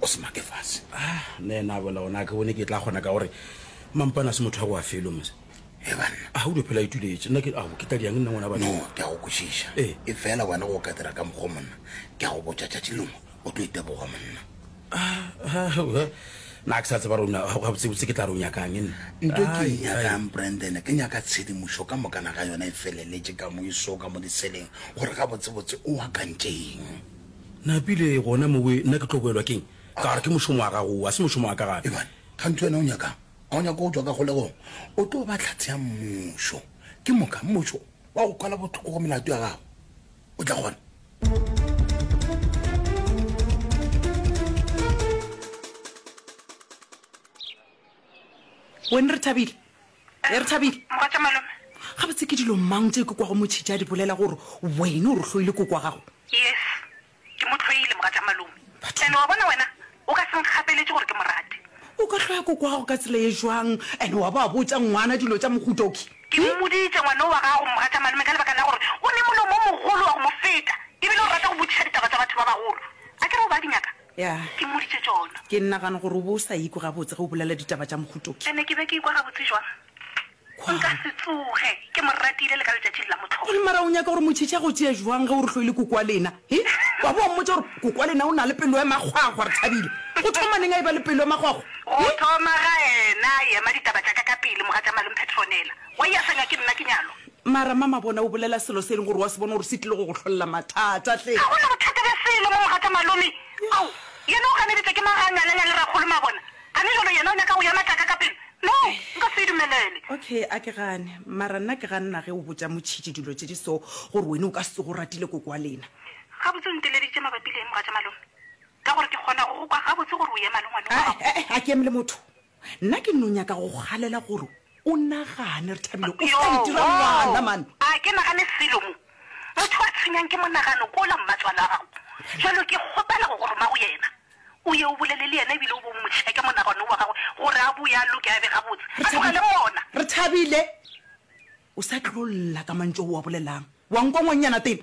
o se make fase ah, nna ena a bola ona ke bone ke tla kgona ka gore mampana se motho wa go a felo mose e banna a o dophela ituletse nna ke ao ke tla diang nna ngwana ba no ke a go kwešiša e e fela wena go ka dira ka mokgwa monna ke a go botša tšatši lengwe o tlo iteboga monna na ke sa tseba rona gabotsebotse ke tla re o nyakang e nna nto ke e nyakang branden ke nyaka tshedimošo ka mokana ga yona e feleletse ka mo iso ka mo diseleng gore gabotsebotse o akantšeng Napile gona mo we, nna ke tlo boelwa keng? Ka gore ke mošomo wa gago wo, a se mošomo wa ka gape. Eban, kganthe wena o nyakang? A o nyaka go tšwa ka kgolegong? O tlo ba tlhatse ya mmušo. Ke moka, mmušo wa go kwala bothoko go melato ya gago. O tla kgona. Wena Rethabile, e re thabile Mogatša malome. gabotse ke dilo mang tše ke kwago motšhitši a di bolela gore wena o re hloile koko wa gago Yes, ke mo hloile mogatša malome. But- Ene wa bona wena o ka se nkgapeletše gore ke mo rate. o ka hloya koko wa gago ka tsela e jwang ene wa ba wa botša ngwana dilo tša mohuta oki Ke mmoditše ngwana o wa gago mogatša malome ka lebaka la gore o ne molomo o mogolo wa go mo feta ebile o rata go botšiša ditaba tša batho ba bagolo. A ke re o ba di nyaka? Ya. Ke mmoditše tšona. Ke nagana gore o be o sa ikwe gabotse ge o bolela ditaba tša mohuto ke. Ke ne ke be ke ikwa gabotse bjang? Kwa. Nka se tsoge ke mo ratile le ka letšatšing la mohlolo. Gomme mara o nyaka gore Motšhetši a go tšee bjang ge o re hloile koko wa lena? He? Wa bo wa mmotša gore, Koko wa lena o na le pelo ya makgwakgwa, re thabile. Go thoma neng a eba le pelo ya makgwakgwa? Go He? thoma ga ena a ema ditaba tša ka ka pele, mogatša Malome Petronella. Wa easanywa ke nna, ke nyalwa. Mara mama bona o bolela selo se e leng gore wa se bona gore se tlile go go hlolela mathata hle. Ga go na bothata bja selo mo mogatša malome. Ao, yena o ganeditšwa ke mang ge a nyalanya le rakgolo mabona? A ne jalo yena o nyaka go ya matlaka ka pelo? No, nka se e dumelele. Okay, a ke gane. Mara nna ke ganna ge o botša Motšhitši dilo tše di so gore wene o ka se tsoge o ratile koko wa lena. Gabotse o nteleditše mabapi le eng mogatša malome? Ka gore ke kgona go go kwa gabotse gore o ema le ngwanong wa gago. He-e, a ke eme le motho. Nna ke nno nyaka go go galela gore o nagane, re thabile o tla itira ngwana, man. A ke nagane selo mo? Motho a tshwenyang ke monagano ke ola mmatswale wa gago. Jalo ke kgopela go go roma go yena, o ye o bolele le yena e bile o bo o mo tšheke monagano wo wa gagwe gore a boe a loke a be gabotse, a tlogele mona. Re thabile o sa tlo lla ka mantšu ao o a bolelang, wa nkwa ngwannyana tena.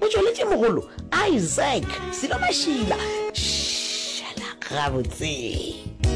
O tšweletše mogolo Isaac selo mašila. Šala gabotse.